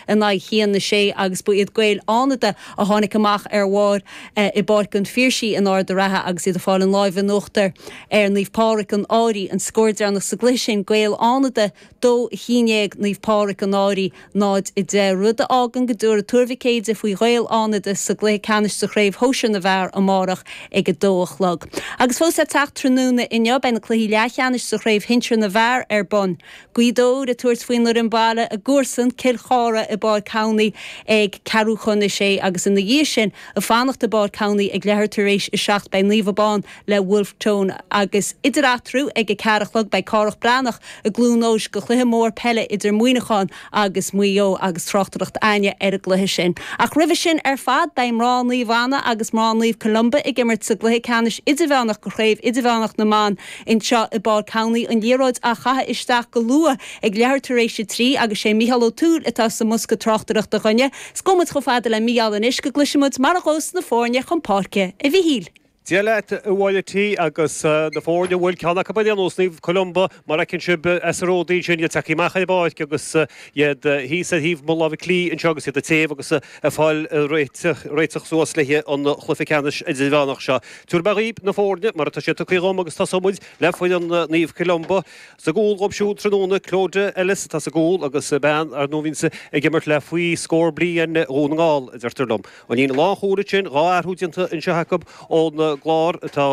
in aghaidh a haon a sé agus ba iad Gaeil Fhánada a tháinig amach ar bharr i bPáirc an Phiarsaigh in Ard an Rátha agus iad ag fáil an láimh in uachtar ar Naomh Pádraig, An Fhairche, an scór deireanach sa gcluiche sin, Gaeil Fhánada 2 11 Naomh Pádraig, An Fhairche 0 10, rud a fhágann go dtabharfaidh Tuar Mhic Éadaigh faoi Ghaeil Fhánada sa gcluiche ceannais de Chraobh Shóisir na bhFear amárach ag a dó a chlog. Agus fós le teacht tráthnóna inniu, beidh na cluichí leathcheannais de Chraobh Shinsir na bhFear ar bun. Gaoth Dobhair ag tabhairt faoin fhoireann baile a gcomharsan Cill Chartha i bPáirc Thamhnaigh ag ceathrú chun a sé agus ina dhiaidh sin ag fanacht i bPáirc Thamhnaigh ag leathuair tar éis a seacht beidh Naomh Abán le Wolfe Tone agus idir eatarthu ag a ceathair a chlog beidh Cárthach Breathnach i gCluain Eois do chluiche mór peile idir Muineachán agus Maigh Eo agus tráchtaireacht againne ar an gcluiche sin ach roimhe sin ar fad beidh mná Naomh Anna agus mná Naomh Columba ag imirt sa gcluiche ceannais idirmheánach de chraobh idirmheánach na mban Anseo i bPáirc Thamhnaigh an liathróid á caitheamh isteach go luath ag leathuair tar éis a trí agus sé Micheál Ó Tuathail atá sa mbosca tráchtaireachta dhúinne 's gabhfaidh muid chomh fada le Mícheál anois go gcloisfidh muid mar a ghabhfas na foirne chun páirce, A Mhichíl. Dia leat a Mháire T agus na foirne bhuel ceann acu ar aon nós, Naomh Columba mar a fheiceann sibh as a ródaí sin, iad tagtha amach ar an bpáirc agus iad thíos ar thaobh mo láimhe clí anseo agus iad ag téamh agus ag fáil réitithe suas le haghaidh an chluiche ceannais idirmheánach seo. Tabharfaidh mé dhaoib na foirne mar atá sé tugtha dhom agus tosóimid le foireann Naomh Columba. Sa gcúl dhóib siúd tráthnóna, Clodagh Ellis atá sa gcúl agus bean, ar ndóigh, a bhíonns ag imirt le faoi scór bliain Dhún na nGall, a deirtear liom. An líne lánchúil ansin, dhá athrú déanta anseo acu ón gclár atá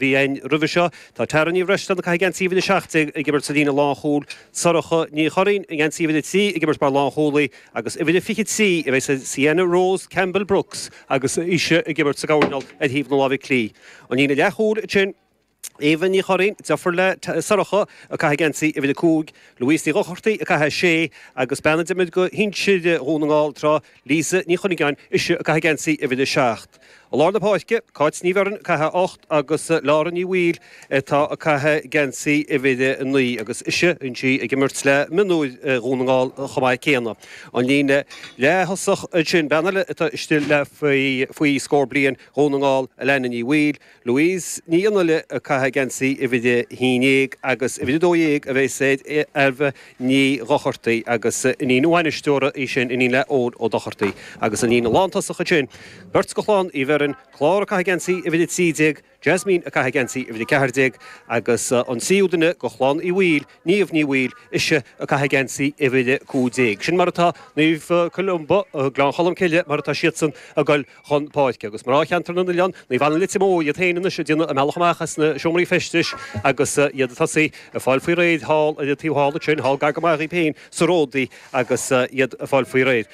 bhí ann roimhe seo. Tá Tara Ní Bhreisleáin, ag caitheamh geansaí uimhir a seacht déag, ag imirt sa líne lánchúil, Sorcha Ní Churraoin i ngeansaí uimhir a trí ag imirt mar lánchúlaí agus uimhir a fiche trí a bheidh Sienna Rose Campbell-Brooks, agus ise ag imirt sa gcoirnéal ar thaobh na láimhe clí. An líne leathchúil ansin, Eva Ní Churraoin, deirfiúr le Sorcha, ag caitheamh geansaí uimhir a cúig, Louise Ní Dhochartaigh ag caitheamh a sé agus bean a d'imir do shinsir Dhún na nGall tráth, Lisa Ní Chuinneagáin, ise ag caitheamh geansaí uimhir a seacht. I lár na páirce, Cáit Ní Bheirn, ag caitheamh a hocht agus Laura Ní Bhaoill, Atá ag caitheamh geansaí uimhir a 9 agus ise bíonn sí ag imirt le mionúir Dhún na nGall chomh maith céanna. An líne leath-thosach ansin, bean eile atá istigh le faoi scór bliain, Dhún na nGall, Alanna Ní Bhaoill, Louise Nic Fhionnghaile, ag caitheamh geansaí uimhir a 11 agus uimhir a 12 a bheidh sé ag Ailbhe Ní Dhochartaigh agus iníon an bhainisteora í sin, iníon le Eoin Ó Dochartaigh. Agus an líne lántosach ansin, beirt de Chlann Uí Bheirn, Clár ag caitheamh geansaí uimhir a 13, Jasmine ag caitheamh geansaí uimhir 14 agus an tríú duine de chlann Uí Bhaoill, Niamh Ní Bhaoill, ise ag caitheamh geansaí uimhir 15. Sin mar atá Naomh Columba, Gleann Cholm Cille, mar atá siadsan ag dul chun páirce agus mná Cheantar na nOileán, Naomh Anna Leitir Móir, iad féin anois ag déanamh a mbealach amach as na seomraí feistis agus iad ag tosú ag fáil faoi réir thall ar an taobh thall ansin, thall gar go maith dhaoibh féin sa Ródaí agus iad ag fáil faoi réir.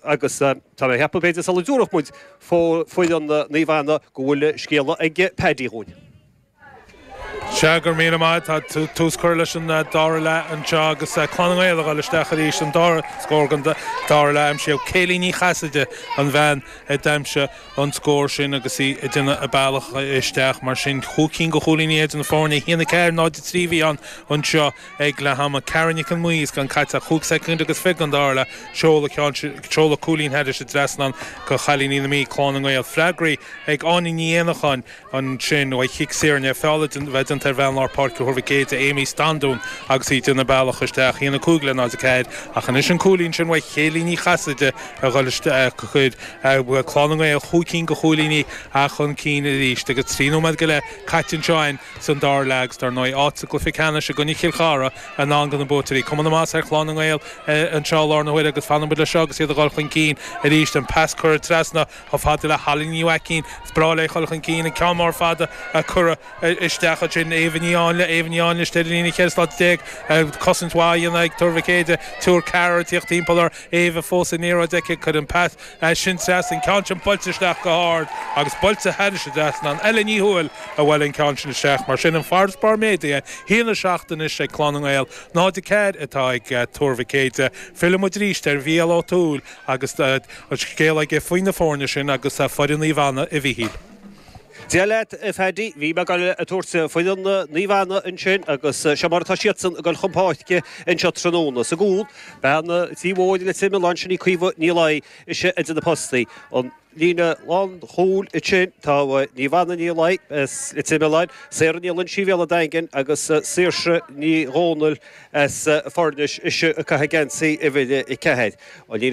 Agus tá mé ag ceapadh b'fhéidir sula dtabharfaidh muid. foireann Naomh Anna go bhfuil scéala ag Paddy dhúinn. Sea, go raibh míle maith. Tá tús curtha leis an dara leath anseo agus Clann na nGael a ghabháil isteach arís an dara scór den dara leath aimsithe. Kayleigh Ní Chasaide, an bhean a d'aimsigh an scór sin agus í ag déanamh a bealach isteach. Mar sin, chúig cinn de chúilíní idir na foirne. 1-4, 0-3 a bhí ann anseo. ag leath ama, Cara Nic an Mhí, is gan caite ach chúig soicind agus fiche den dara leath, ag seoladh cúilín thairis an trasnán do chailíní na Mí, Clann na nGael, freagraí ag Áine Ní Éanacháin, ansin uaidh chic saor i ndiaidh feall a bheith déanta ar bhean lár páirce Thuar Mhic Éide, Amy Standún, agus í ag déanamh a bealach isteach, 1-5 le 0-4 ach anois an cúilín sin uaidh Kayleigh Ní Chasaide a ghoil isteach, chuir Clann na nGael chúig cinn de chúilíní chun cinn arís agus trí nóiméad go leith caite anseo in. San dara leath agus, dar ndóigh, áit sa gcluiche ceannais i gcoinne Chill Chartha i ndán do na buaiteoirí. Cuma na maitheasa ar Chlann na nGael anseo i láthair na huaire agus fanfaidh muid le seo agus iad a dhul chun cinn arís. An pas curtha trasna chomh fada le hAlain Ní Mhaicín. Is breá léi dhul chun cinn. An ceann mór fada a cuireadh isteach ansin. Éabha Ní Áinle. Éabha Ní Áinle istigh ar an líne cheithre slata déag. Cosaint mhaith a dhéanamh ag Tuar Mhic Éide. Triúr, ceathrar ag tíocht timpeall uirthi. Éabha fós an liathróid aici. Cuireann pas. Ansin trasna, an ceann sin buailte isteach go hard agus buailte thairis an trasnán. Ella Ní Thuathail a bhuail an ceann sin isteach mar sin an farasbarr méadaithe, 1-7 anois ag Clann na nGael, 0-4 atá ag Tuar Mhic Éide. Fillfidh muid arís ar Mhícheál Ó Tuathail agus an scéal aige faoi na foirne sin agus foireann Naomh Anna, a Mhíchíl. Dia leat a Phaddy, bhí mé ag goil a tabhairt foireann Naomh Anna ansin agus seo mar atá siadsan ag goil chun páirce anseo tráthnóna. Sa gcúl, bean an Tí Mhóir, Leitir Mealláin, sin í Caoimhe Ní Laoi, ise idir na postaí. An líne lánchúil ansin, tá Niamh Anna Ní Laoi, Leitir Mealláin, Sarah Ní Loingsigh Bhéal an Daingin agus Saoirse Ní Dhomhnaill as Foirnis, ise ag caitheamh geansaí uimhir a ceathair. An líne